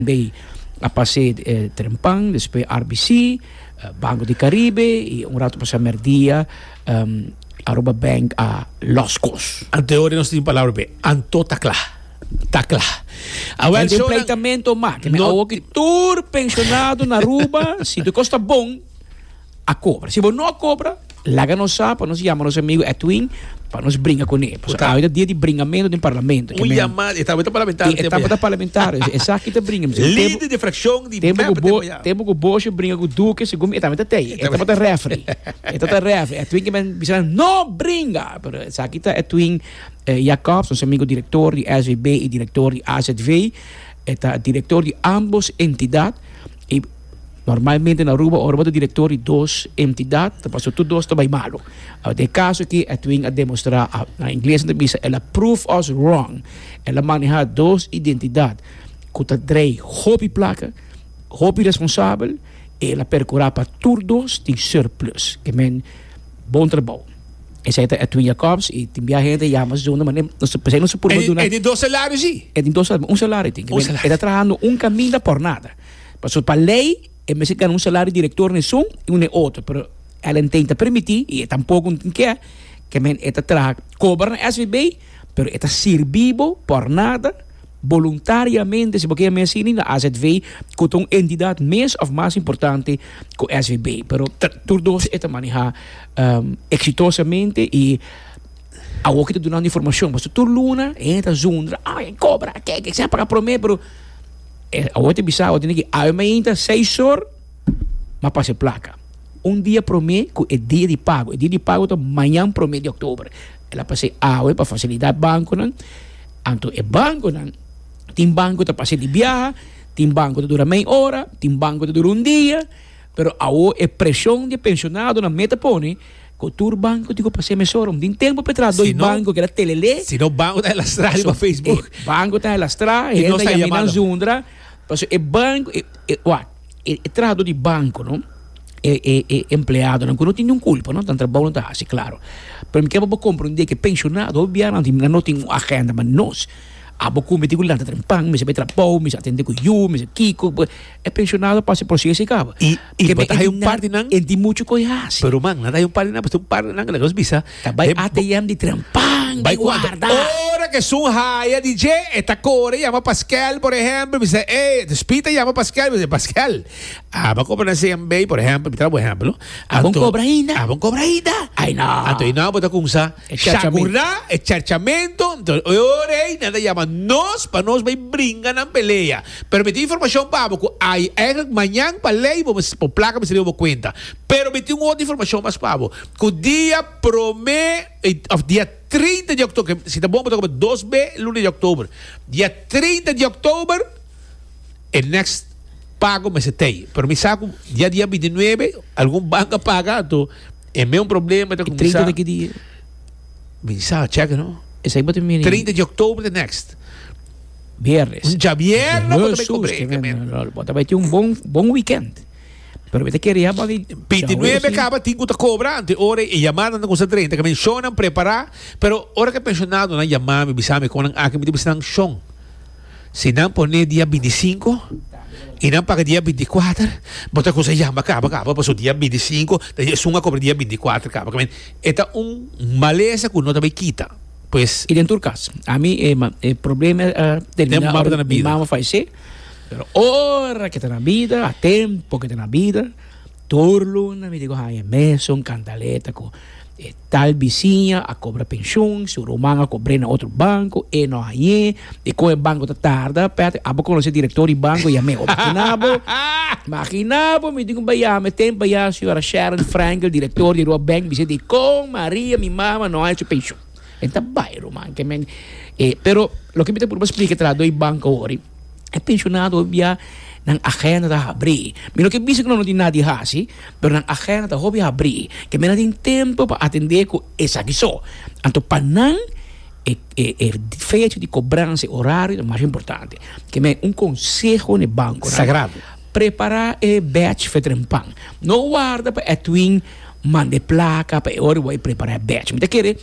Bay a pas'é Trempan, despues RBC, Banco di Caribe y un rato pas'é merdia Aruba Bank a Lost Coast. Anto e ora nos tin palabra p'e. Anto ta cla. Ta cla. Awel shownan. No tin pleitamento mas. Kende awo ki tur pensionado na Aruba si tu cos ta bon. a cobra. Si bo no a cobra, laga nos sa pa nos yama nos amigo Edwin pa nos bringa con e. Pues awita dia di bringamento den parlamento. Un yama, e tabata parlamentario. E tabata parlamentario. E saki ta bringa. Lider de fraccion di mep tempo pa ya. Tempo cu boshi bringa cu duke segun mi e tabata tey. E tabata refri. E tabata refri. Edwin ki men bisa nan no bringa. Pero e saki ta Edwin Jacobs, nos amigo director di SVB y director di AZV. E ta director di ambos entidad. Normalmente na Aruba ora bo ta director di dos entidad ta paso tur dos ta bay malo. Uh, den e caso aki Edwin a demostra, a, na Ingles nan ta bisa, el a prove us wrong. El a maneha dos identidad cu ta draai hopi placa, hopi responsabel, y el a percura pa tur dos tin surplus. Ke men, bon trabou. Esey ta Edwin Jacobs y tin bia hende yama zona, ma nen, nos, pesey nos a purba E, duna, e di dos salarios i. e tin dos, un salario tin, ke Un men, e ta salario. trahando un caminda por nada. Pasobra pa ley e mester gana un salario director n'esun y un e otro, pero Ellen Teng ta permiti y e tampoco tin ke ke men e ta traha cobra na SVB, pero e ta sirbi bo por nada voluntariamente si bo ke yama asina na azv cu ta un entidad mes of mas importante cu SVB, pero tur dos e ta maneha exitosamente y. Awo ki ta dunando informacion, pasobra tur luna e hende ta zundra, ay, e cobra, e keke, esaki a paga prome, pero e awo ta bisa, awo ta niki, awe mainta seis or, m'a pasa e placa. Un dia prome cu e dia di pago, e dia di pago ta mañan prome di october, el a pas'e awe pa facilidad banconan, anto e banconan, tin banco cu ta pas'e di biaha, tin banco ta dura mei ora, tin banco ta dura un dia, pero awo e presion di e pensionadonan me ta pone, Cu tur banco digo pa seme sorom. Di un tempo pe tras doy banco keda telele. Si no banco ta elastra riba Facebook. Paso e banco ta elastra e hende ta yami nan zundra. Paso e banco wak e trahador di banco no e empleadonan cu no tin niun culpa no tan trabou nan ta haci claro. Pero mi kier pa bo comprende cu e pensionado hopi bianan tin nan no tin un agenda ma nos abo cometi cu lanta temprano mester bay trabou mester atende cu yu mester kico e pensionado pasa e proceso y caba. Y también hay un par de nan. En di mucho coi hace. Pero man, nada hay un par de nan, pues un par de nan que nos bisa. Ta bai ATM di trampan, bai guarda. Ora que sun haya di je, e ta core llama Pasquel, por ejemplo, bisa, eh, dus pita llama Pasquel, bisa, Pasquel, aba cobra na CMB, por ejemplo, mi trae un ejemplo. Abon cobra ainda? Abon cobra ainda? Ay no. Anto y no, bota cunsa. Shagurá e charchamentu, anto e ora ei nan ta yama nos pa nos bai bringa nan pelea. Pero mi tin informashon pa bo ku ai eigenlijk mañan pa lei bo mester por plaka mester riba bo kuenta. Pero mi tin un otro informashon mas pa bo, ku dia promé òf dia trinta di òktober, ke si ta bon bo ta kobra dos be luna di òktober, dia trinta di òktober e next pago mester ta ei. Pero mi sa ku ya dia binti nuebe algun bank a paga anto. E meun problema ta kumsa. E 30 di ki di? Sa, cheke no. Esei bo ta mini. 30 di oktober ta next. Biernes. Un djabierna bo ta bai kobré. Jesus, kemen. Bo ta bai tin un bon, bon weekend. Pero mi ta kere ya bali. Piti nuebe kaba tin ku ta kobra ante ora e yamannan ta kumsa drenta. Kemen shonnan prepará. Pero ora ku e penshonado nan yama mi, bisa mi kon nan aki, mi ta bisa nan shon. Si nan pone dia bintisinko i nan paga dia bintikuater, bo ta kusa yama kaba kaba paso dia bintisinko ta esun a kobra dia bintikuater kaba kaba. E ta un malesa ku no ta bay kita, pues. I den tur kas, ami e e problema a termina ora mi mama a falesé, pero ora ke ta na bida, a tempo ke ta na bida, tur luna mi diku haña mesun kantaleta ku e. Tal bisiña a cobra pensioen, su ruman a cobr'e na otro banco, e no hañ'e, e con e banco ta tarda, Patrick, abo conoce director di banco, yam'e hopi. Maginabo, maginabo mi tin cu baya, mi tem baya señora Sharon Frankel, director di Roa Bank, bis'e di con Maria mi mama no haña su pensioen. E ta bay ruman, ke men, e, pero loke mi ta purba splica, e ta la doi banco awor, i. E pensionado bia nan agenda ta habri. Mi no ke bisa ku nan no tin nada di hasi, pero nan agenda ta hopi habri. Kende nan tin tempu pa atende ku esaki so. Anto pa nan e e fecha di kobransa, e orario ta mas importante. Ke men un konseho na e bankonan. Sagrado. Prepara e bèch fo e trempan. No warda pa Edwin manda e plaka pa e ora bo a prepara e bèch. Mi ta kere.